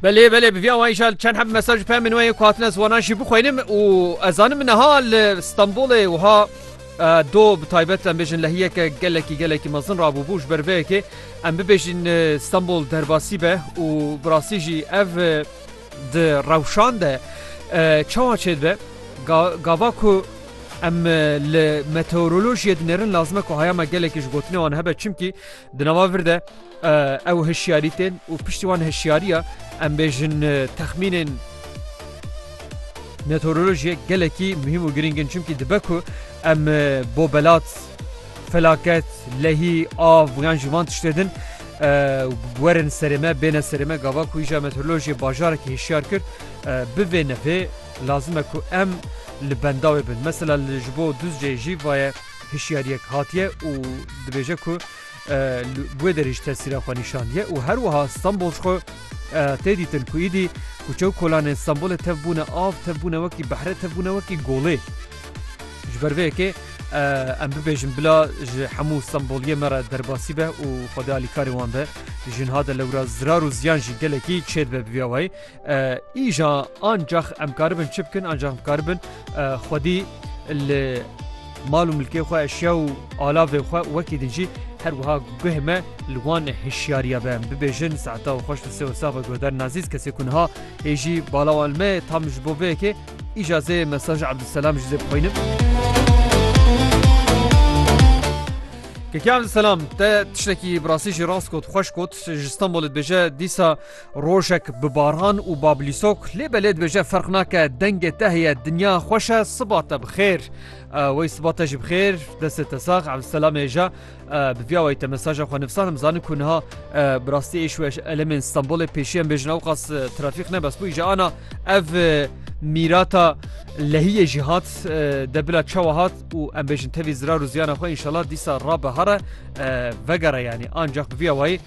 Belê belê bi vî awayî jî çend heb mesaj û peyamên wê ku hatine ziwanan jî bixwînim û ez zanim niha li Stenbolê wiha do bi taybet em bêjin lehiyeke gelekî gelekî mezin rabûbû ji ber vê yekê em bibêjin Stenbol derbasî be û bi rastî jî ev di rewşan de çawa çêd be gava ku em li meteorolojiyê dinêrin lazime ku haya me gelekî ji gotinê wan hebe çimkî Di nava vir de ew hişyarî tên û piştî wan hişyariya em bêjin texmînên meteorolojiyê gelekî muhîm û girîngin çimkî dibe ku em bo belat felaket lehî av yan ji van tiştê din werin serê me bêne serê me gava ku îja meteorolojiyê bajarekî hişyar kir bivê nepê lazim e ku em li bendawê bin mesela li ji bo duzcê jî vaye hişyariyek hatiye û dibêje ku li wê derê jî tesîra xwe nîşandiye û her wiha Stenbol ji xwe tê dîtin ku îdî kuçe û kolanên Stenbolê tev bûne av, tev bûne wekî behre, tev bûne wekî golê. Ji ber vê yekê em bibêjin bila ji hemû Stenboliyê me re derbasî be û xwedê alîkarê wan be. Ji niha de lewra zirar û ziyan jî gelekî çêdibe bi vî awayî. Îja ancax em karibin çi bikin ancax em karibin xwedî li mal û milkê xwe eşya û alavê xwe wekî din jî her wiha guh me li wan hişyariya be bibêjin saeta û xweş sê sava guhdar nazîz kesê ku niha hê jî balawan me tam ji bo vê yekê îja zê mesaj Abdulselam ji zê bixwînim. Kekam selam te tiştekî birasî jî rast got xweş got ji Stenbolê dibêje dîsa Rojek bi baran û bablîsok lê belê dibêje ferq nake dengê te heye dinya xweş e siba te bi xêr. Wey siba te jî bi xêr destê te sax Evselam êje bi vîya wey te mesaja xwe nivsanim zanim ku niha bi rastî êş û elemên Stenbolê pêşiyan bêjin ewqas trafîq ne bes bû îje ana ev mîrata lehiyê jî hat de bila çawa hat û em bêjin tevî zirar û ziyana xwe înşallah dîsa rabe here vegere yanî ancaq bi vîya wayî